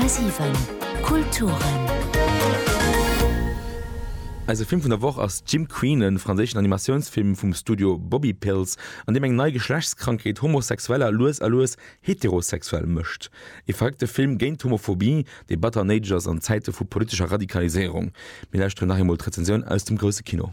10,7 Kulturen. Eise Film vun der Woch ass Jim Queen, e franséischen Animatiounsfilm vum Studio Bobby Pills, an deem eng nei Geschlechtskrankheet Homosexueller lues a lues heterosexuell mécht. Ee verréckte Film géint d'Homophobie, dee batter néideg ass an Zäite vu politescher Radikaliséierung. Mir lauschteren nach eemol d'Rezensioun aus dem grousse Kino.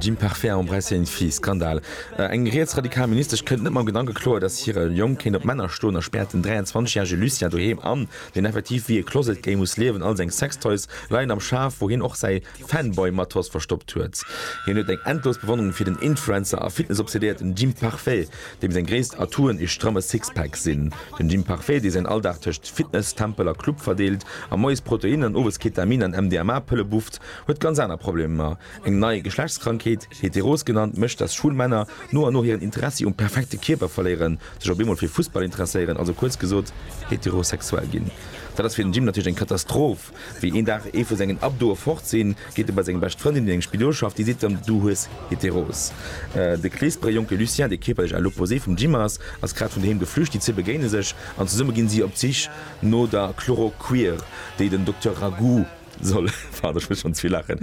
Jim Parfait, Embrasser une fille, Skandal, Eng rietsradikal Ministesch kënnt net mam Gedanke kloer, datt hire Jong kéint op Männer stoen a späert den 23 järege Lucien doheem an, deen effektiv wéi e closet gay muss liewen. All seng Sextoys leien am Schaf, wou hien och säi Fanboy-Matos verstoppt huet. Hien huet eng endlos Bewonnerung fir den Influencer a Fitness-obsedéierten Jim Parfait, deem seng gréisst Atouen ee stramme Sixpack sinn. Den Jim Parfait, dee säin Alldag tëscht Fitness, Tempel a Club verdeelt a moies Protein an owes Ketamin an MDMA-Pëlle bufft, Huet ganz aner Problemer, eng nei Geschlechtskrankheet, heteros genannt, mécht dass schwul Männer no an no hiren Interessi um perfekte Kierper verléieren, sech op eemol fir Fussball interesséieren, also kuerz gesot heterosexuell ginn. Dat ass fir den Jim natierlech eng Katastroph, wéi een Dag ee vu sengen Abdoe fort sinn, geet e bei seng bescht Frëndin, déi an engem Spidol schafft, déi seet em, du hues heteros. De Kleesperer Jonke Lucien, dee kierperlech à l'opposé vum Jim ass, ass grad vun doheem geflücht, déi zwee begéine sech an zesumme ginn si op d'Sich no der Chloroquir, déi den Dokter Ragout, Soll, pardon, ech muss schonn ze vill laachen,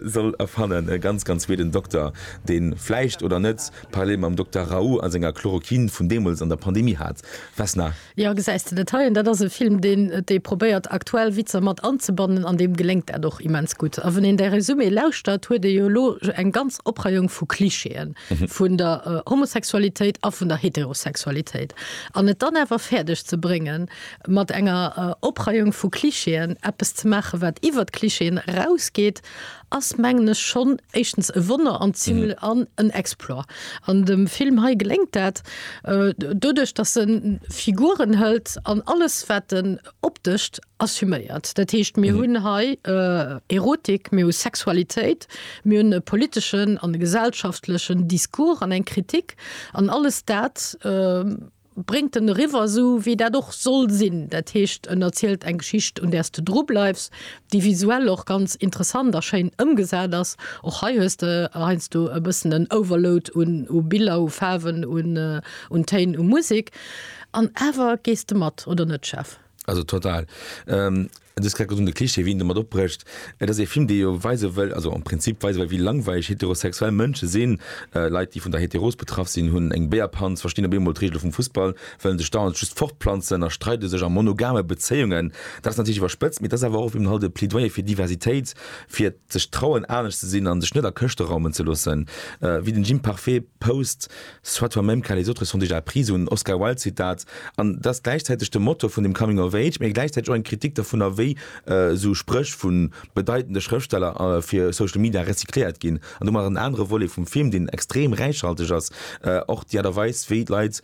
soll erfannen, e ganz, ganz weeden Dokter, deen, vläicht oder net, parallel mam Dokter Raoult a senger Chloroquine vun deemools an der Pandemie hat. Vesna. Jo, gesäis de net hei? An dat ass e Film, deen dee probéiert, aktuell Witzer mat anzebannen, an deem geléngt dat och immens gutt. A wann een däi Résumé lauschtert, huet ee jo elo eng ganz Opreiung vu Klischeeën vun der Homosexualitéit a vun der Heterosexualitéit. An et dann awer fäerdeg ze bréngen, mat enger Opreiung vu Klischeeën eppes ze maachen, wat iwwert d'Klischeeën erausgeet, ass mengen ech schonn éischtens e Wonner an zimle an en Exploit. An dem Film hei geléngt dat doduerch, datt e Figuren hëlt an alles, wat en optescht, assuméiert. Dat heescht, mir hunn hei Erotik, mir hu Sexualitéit, mir hunn e politeschen an e gesellschaftlechen Discours an eng Kritik an alles dat, bréngt en eriwwer, esou wéi dat och soll sinn, dat heescht en erzielt eng Geschicht un där s de dru bleifs, déi visuell och ganz interessant a schéin ëmgesat ass. Och hei hues de heiansdo e bëssen en Overload u Biller, u Faarwen, un Téin, u Musek, an awer gees de mat, oder net Jeff? Also total. Ähm, du hast gesagt, de Klischee, wien damit opbrecht. Et ass e Film, dee jo weise wëll, also am Prinzip weise wëll, wéi langweileg heterosexuell Mënsche sinn. Äh, Leit, déi vun der Heteros betraff sinn, hunn eng Béierpanz, verstinn op eemol d'Reegele vum Fussball, wëllen sech dauernd just fortplanzen a streide sech a monogame Bezéiungen. Dat ass natierlech iwwerspëtzt, mee dat ass awer och eben halt e Plädoyer fir Diversitéit, fir sech trauen, anescht ze sinn a sech net a Këschte raumen ze loossen. Äh, wéi den Jim Parfait post, Soit toi-même car les autres sont déjà pris, esou en Oscar Wilde Zitat. An et ass gläichzäiteg de Motor vun dem Coming of Age, mee gläichzäiteg och eng Kritik dervunner, wéi esou Spréch vu bedeitende Schrëftsteller fir Social Media recycléiert ginn. An domat ass en anere Volet vum Film, deen extrem räichhalteg ass, och déi Aart a Weis, wéi d'Leit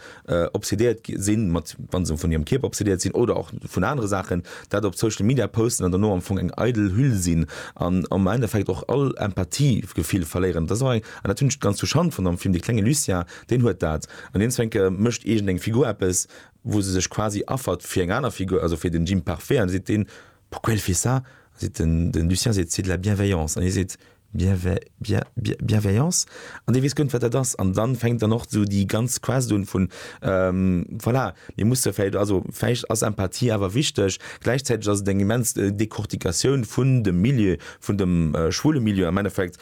obsedéiert si mat, wa se vun hirem Kierper obsedéiert sinn oder och vun anere Saachen, dat op Social Media posten an dono am Fong eng eidel Hüll sinn an am Endeffekt och all Empathiegefill verléieren. Et ass och eng. An dat hunn ech ganz zur Schand fonnt am Film, dee klenge Lucien, deen huet dat. An deen Zwénke mécht iergend eng Figur eppes, wou se sech quasi affert fir eng aner Figur, also fir den Jim Parfait, an da seet deen, Pourquoi elle fait ça? An da seet den, den Lucien seet, C'est de la bienveillance. An hie seet, Bienvei, bien, bien, bienveillance? An dee weess guer net, wat dat ass. An dann fänkt dann och esou déi ganz Quest un vun, ähm, voilà, mir musse vläicht, also vläicht ass Empathie awer wichteg. Gläichzäiteg ass et eng immens Decortication vun dem Milieu, vun dem schwule Milieu am Endeffekt,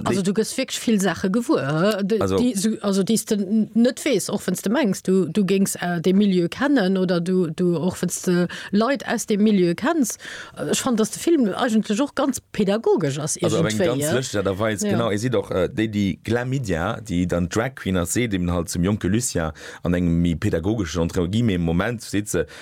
Also du gëss wierklech vill Saache gewuer, déi s de net weess, och wann s de mengs, du géings dee Milieu kennen oder och wann s de Leit aus deem Milieu kenns. Ech fannen, datt de Film eigentlech och ganz pedagogesch ass iergendwéi. Also op eng ganz lëschteg Aart a Weis, genau. Ee seet och, déi, déi Glamydia, déi dann d'Drag Queen ass, seet eben halt zum jonke Lucien an engem méi pedagogeschen, entre guillemets, Moment, seet se,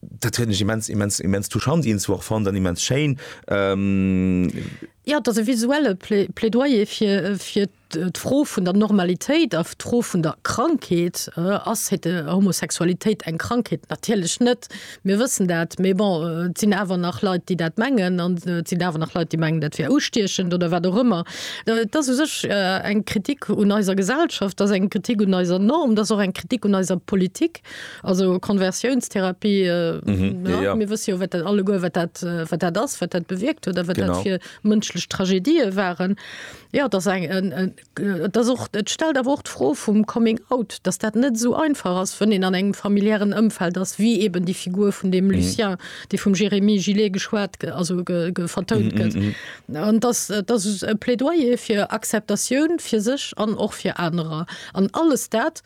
Dat huet mech immens immens immens touchant ins war fand an immens Schein. Ähm, Ja, dass e visuelle Plä- Plädoyer fir, äh, fir d', äh, d'Fro vun der Normalitéit a d'Fro vun der Krankheet, äh, ass hete Homosexualitéit eng Krankheet? Natierlech net, mir wëssen dat, mee bon, äh, et sinn awer nach Leit, déi dat mengen an äh, et sinn awer nach Leit, déi mengen, dat wär ustiechend oder wat och ëmmer. Äh, Et ass u sech äh, eng Kritik un eiser Gesellschaft, et ass eng Kritik un eiser Norm, et ass och eng Kritik un eiser Politik. Also Konversiounstherapie, mir wësse jo wat dat alleguer wat dat wat dat ass, wat dat bewierkt huet a wat dat fir mënschlech Tragedië waren. Jo, et ass eng et ass och et stellt awer och d'Fro vum Coming out, datt dat net esou einfach ass, wann een an engem familiären Ëmfeld ass, wéi eben déi Figur vun deem Lucien, déi vum Jérémy Gillet geschwat also vertount gëtt. An datt datt e Plädoyer fir Acceptatioun fir sech an och fir anerer an alles dat,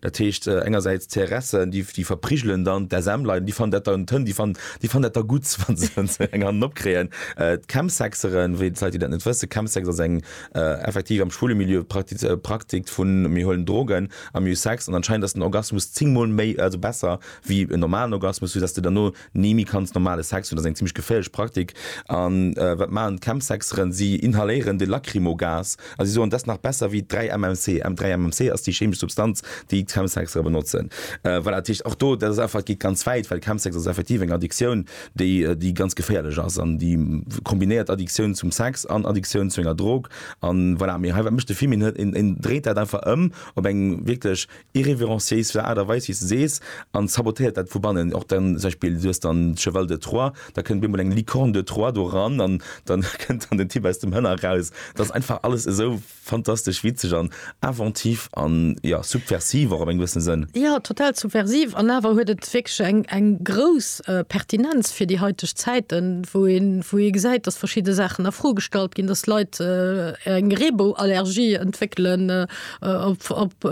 Dat heescht engersäits d'CRSen, déi verprigelen dann d'SMler, déi fannen dat dann toll, déi fannen dat da gutt, wa se eng Hand opkréien. D'Chemsexeren, fir déi Leit, déi dat net wëssen, Chemsex ass eng effektiv am schwule Milieu Praktik vu mir huelen Drogen a mir hu Sex an anscheinend ass den Orgasmus zéng Mol méi, also besser wéi en normalen Orgasmus, soudatt s de derno, Ni méi kanns normale Sex hunn ass eng zimmlech geféierlech Praktik. An wat maachen d'Chemsexeren? Si inhaléieren de Lacrymogas a si soen, dass nach besser wéi 3 MMC. M 3 MMC ass déi chemesch Substanz, déi d'Chemsexere benotzen. Voilà, dat heescht och do, dat ass einfach, et geet ganz wäit, well Chemsex ass effektiv eng Addiktioun, déi, déi ganz geféierlech ass an déi kombinéiert Addiktioun zum Sex an Addiktioun zu enger Drog. An voilà, mee hei, wat mécht de Fimin? Hien, hien dréit dat einfach ëm op eng wierklech irrévérenciéis vun der Aart a Weis, wéi s de sees, an sabotéiert dat vu bannen. Och dann zum Beispill, du hues dann d'Cheval de Troie, da kënnt op eemol eng Licorne de Troie do eran an dann kënnt dann den Typ aus dem Hënner eraus. Dat ass einfach alles esou fantastesch witzeg an inventif an, jo, subversiv och op eng gewëssen Sënn. Jo, total subversiv an awer huet et wierklech eng, eng grouss Pertinenz fir déi heiteg Zäiten, wou een, wou ee gesäit, dass verschidde Saachen a Fro gestallt ginn, dass Leit eng Reebou-Allergie entwéckelen, op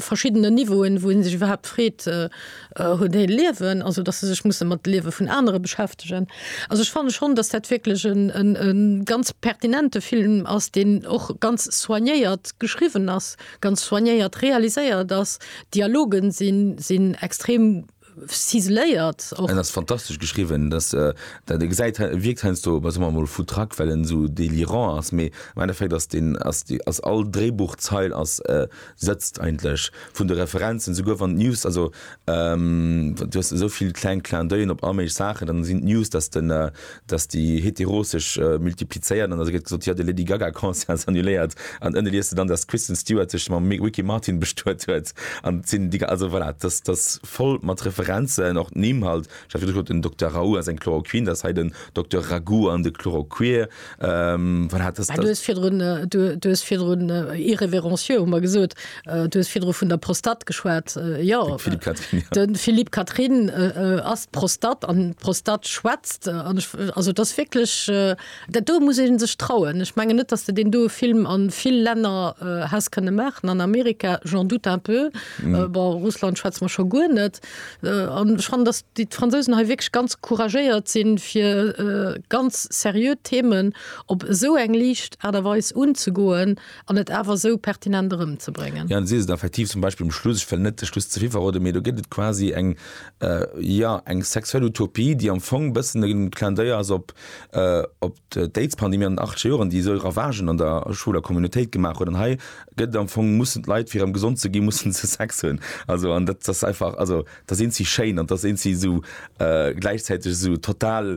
verschiddenen Niveauen, wou ee sech iwwerhaapt freet, hunn déi e Liewen, also datt se sech musse mat de Liewe vun anere beschäftegen. Also ech fanne schonn, datt dat wierklech e ganz pertinente Film ass, deen och ganz soignéiert geschriwwen ass, ganz soignéiert realiséiert ass. D'Dialogen sinn extrem Ciseléiert och. En ass fantastesch geschriwwen, dass dat e gesäit wierkt heiansdo bei soe mol foutraque well en esou délirant ass, mee am Endeffekt ass deen ass déi ass all Dréibuchzeil ass sëtzt eigentlech vun de Referenzen esouguer wann d'News also du hues esou vill kleng Clin d'oeil'en op all méiglech Saachen, dann sinn d'News dass de dass déi Heteros sech multiplizéieren, an da gëtt gesot, jo, de Lady Gaga Concert ass annuléiert, an ënne liest de dann, dass d'Kristen Stewart sech mam Ricky Martin bestuet huet, an et sinn déi, also voilà, dass dass voll mat Referenzen, och d'Nimm halt, ech hat virdu gesot, den Dokter Raoult ass eng Chloroquine, dass hei den Dokter Ragout an de Chloroquir, voilà, dass. Mä du hues virdrun, du hues virdrun irrévérencieux, hu mer gesot. Du hues virdru vun der Prostat geschwat. Jo, de Philippe Catherine ass d'Prostat an d'Prostat schwätzt. Also dat ass wierklech, dat do muss ee sech trauen. Ech menge net, datt de deen doe Film a vill Länner häss kënne maachen. An Amerika, j'en doute un peu, bon, Russland schwätze mer scho guer net. An ech fannen, datt déi d'Fransousen hei wierklech ganz couragéiert sinn, fir ganz seriö Themen op esou eng liicht Aart a Weis unzegoen, An et awer esou pertinent erëmzebréngen. Jo, si se effektiv, zum Beispill um Schluss, ech wëll net de Schluss ze vill verroden, mee do gëtt et quasi eng, jo, eng sexuell Utopie, déi am Fong e bëssen e Clin d'oeil ass op d'Aidspandemie an den acht Joren, déi esou Ravagen an der Schoul a Communautéit gemaach huet. An hei gëtt et am Fong, mussen d'Leit, fir erëm gesond ze ginn, mussen se Sex hunn. Also, an dat ass einfach, also dat eent si schéin an dat eent si esou gläichzäiteg esou total,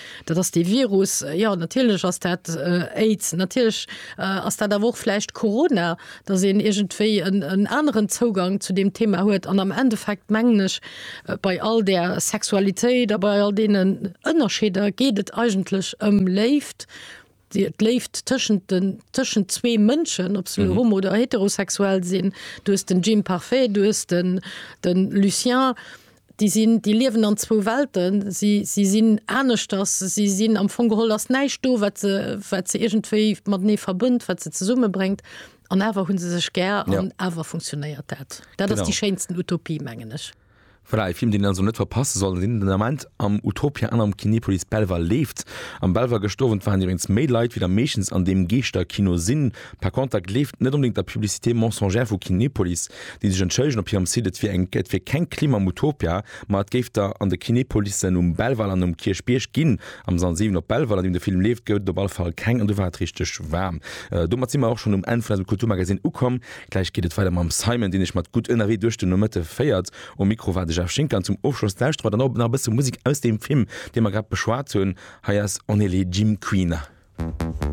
Dat ass dee Virus. Jo, natierlech ass dat Aids. Natierlech ass dat awer och vläicht Corona, datt een iergendwéi en aneren Zougang zu deem Thema huet. An am Endeffekt mengen ech, bei all där Sexualitéit a bei all deenen Ënnerscheeder geet et eigentlech ëm Léift, D'Léift tëschent den, tëschent zwee Mënschen, ob se elo homo oder heterosexuell sinn, du hues den Jim Parfait, du hues den, den Lucien, déi sinn, déi liewen an zwou Welten, si, si sinn aneschters, si sinn, am Fong geholl ass näischt do, wat se, wat se iergendwéi matenee verbënnt, wat se zesummebréngt, an awer hu se sech gär an awer funktionéiert dat. Dat ass déi schéinsten Utopie, mengen ech. Voilà, e Film deen een also net verpasse soll an deen den Ament am Utopia an am Kinepolis Belval leeft. Am Belval gëscht Owend waren iwwregens méi Leit wéi der meeschtens an deem Geeschterkino sinn. Par contre da gleeft net onbedéngt der Publicité mensongère vu Kinepolis, déi sech entschëllegen op hirem Site et wier eng et wier keng Klim am Utopia, ma et géif der an de Kinepolissen um Belval an um Kierchbierg ginn. Am Sall 7 op Belval an deem de Film leeft gouf et op alle Fall keng an do war et richteg waarm. Domat si mer och schonn um Enn vun eisem Kulturmagazine ukomm. Gläich geet et weider mam Simon, deen iech mat Gutt ënnerwee duerch den Nomëtte féiert. Um Mikro war de Jeff Schinker an zum Ofschloss lauschtere mer dann och nach e bësse Musek aus deem Film, dee mer grad beschwat hunn. Hei ass On est les Gym Queena.